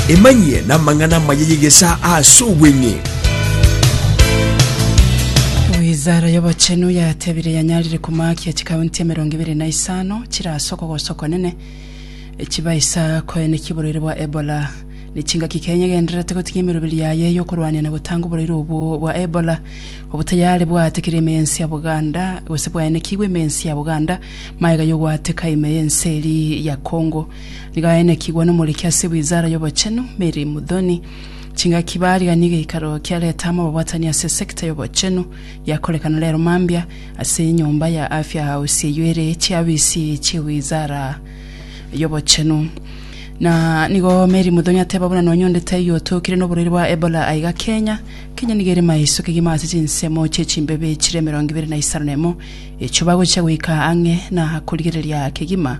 Emanyie namang'ana amaya y'egesaa ase obweng'e. Wizara y'obochenu yatebire yanyarire komakia chikaunti emerongo ebere na isano chirase okogoso okonene echibaisa koenekia oborwaire bwa Ebola. Nechingaki Kenya egendererete gotiga emeroberi yaye y'okorwania na gotanga oborwaire obwo bwa Ebola obotayare bwaatekire ime y'ense ya Buganda gose bwaenekigwe ime y'ense ya Buganda magega y'ogwateka ime y'ense eria ya Congo. Nigo aenekigwe nomoriki ase wizara y'obochenu, Mary Muthoni. Chingaki baariganire egeikaro kia leta amo babwatani ase sector y'obochenu, giakorekana rero mambia ase enyomba ya Afya House eyio ere chiabisi chie wizara y'obochenu. Na nigo Mary Muthoni ateba buna nonya onde taiyo otookire noborwaire bwa Ebola aiga Kenya, Kenya nigo ere maiso kegima ase chinsemo chie chimbebe chire emerongo ibere na isano na emo echio bagochia goika ang'e na korigereria kegima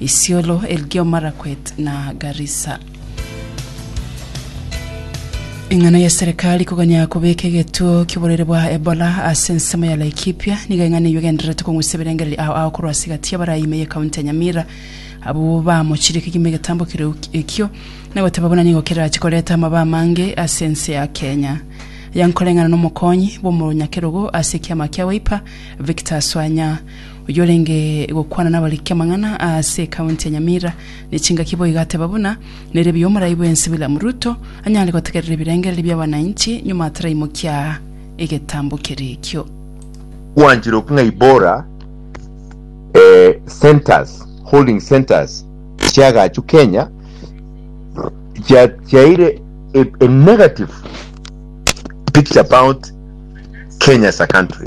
Isiolo, Elgeyo Marakwet na Garissa. Eng'ana ya serikali koganya kobeka egetuo ki'oborwaire bwa Ebola ase ensemo ya Laikipia nigo eng'ana eyio egendererete kong'usa ebirengererio ao ao korwa ase egati y'abarai ime y'ekaunti ya Nyamira abwo bamochirie kegima egetambo kireu ekio na goteba buna nigo kerache koreta amabaa amange ase ense ya Kenya. Yankore eng'ana n'omokonyi bw'omonyakerogo ase ekiama kia Wiper, Victor Swanya. Oyio orenge gokwana nabariki amang'ana ase ekaunti ya Nyamira ne chingaki boigo ateba buna nere biya omorai bwensi William Ruto anyare gotegerera ebirengereri bia wananchi nyuma ataraimokia egetambo keria ekio. Kwanchire okwo ng'a Ibora Centres Holding Centres chiagachu Kenya chiaire a negative picture about Kenya as a country.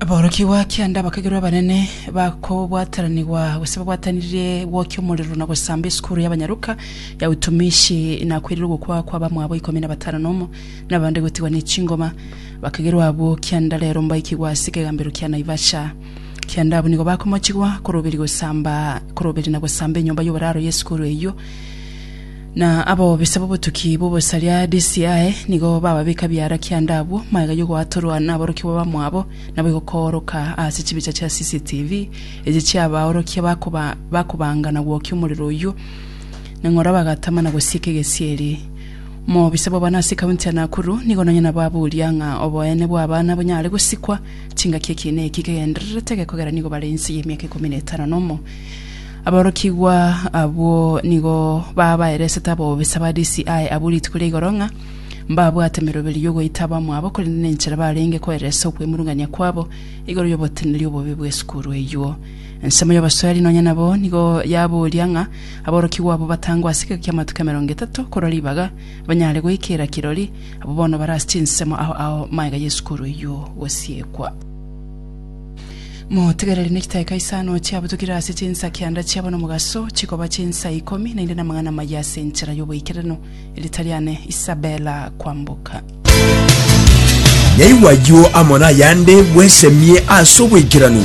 Aborokigwa kianda bakagerwa abanene bakobwataranigwa gose babwatanirie gwokia omorero na gosamba esukuru y'abanyaroka ya utumishi na kwerire ogokwa kw'abamwabo ikomi na batano nomo nabande gotigwa ne chingoma bakagerwa abwo kianda rero mbaikigwa ase ekegambero kia Naivasha kianda abwo nigo bakomochigwa koroberia gosamba koroberia na gosamba enyomba y'oboraro y'esukuru eyio Na abobisa b'obotuki bw'obosaria DCI nigo bababeka biara kianda abwo, magega y'ogoatorwa naborokigwa bamwabo nabo egokooroka ase chibicha chia CCTV echi chi'abaorokia bakoba bakobanga na gwokia omorero oyio na ng'ora bagatama na gosiika egesieri. Omobisa bw'abana ase ekaunti ya Nakuru nigo nonya nabo aburia ng'a oboene bw'abana bonyare gosikwa chingaki ekiina eki kegendererete gekogera nigo bare inse y'emiaka ikomi na etano na omo. Aborokigwa abwo nigo baabaeresete abobisa ba DCI abwo rituko ria igoro ng'a mbabwate emeroberio y'ogoita abamwabo korende nenchera barenge koereresa okwemurungania kwabo igoro y'oboteneneri obobe bw'esukuru eyio. Ensemo y'abasweri nonya nabo nigo yaboria ng'a aborokigwa abwo batangwe ase egeka ki'amatuko emerongo etato korwa ribaga banyare goikera kirori abwo bono bare ase chinsemo ao ao magega y'esukuru eyio gosiekwa. Motegereri ne chitaika isano chiabutukire ase chinsa kianda chiabo nomogaso, chikoba chinsa ikomi naende namang'ana amayia ase enchera y'oboikeranu, eritariane Isabela kwamboka. Yaigwa ayio amo nayande bwesemie ase oboikeranu.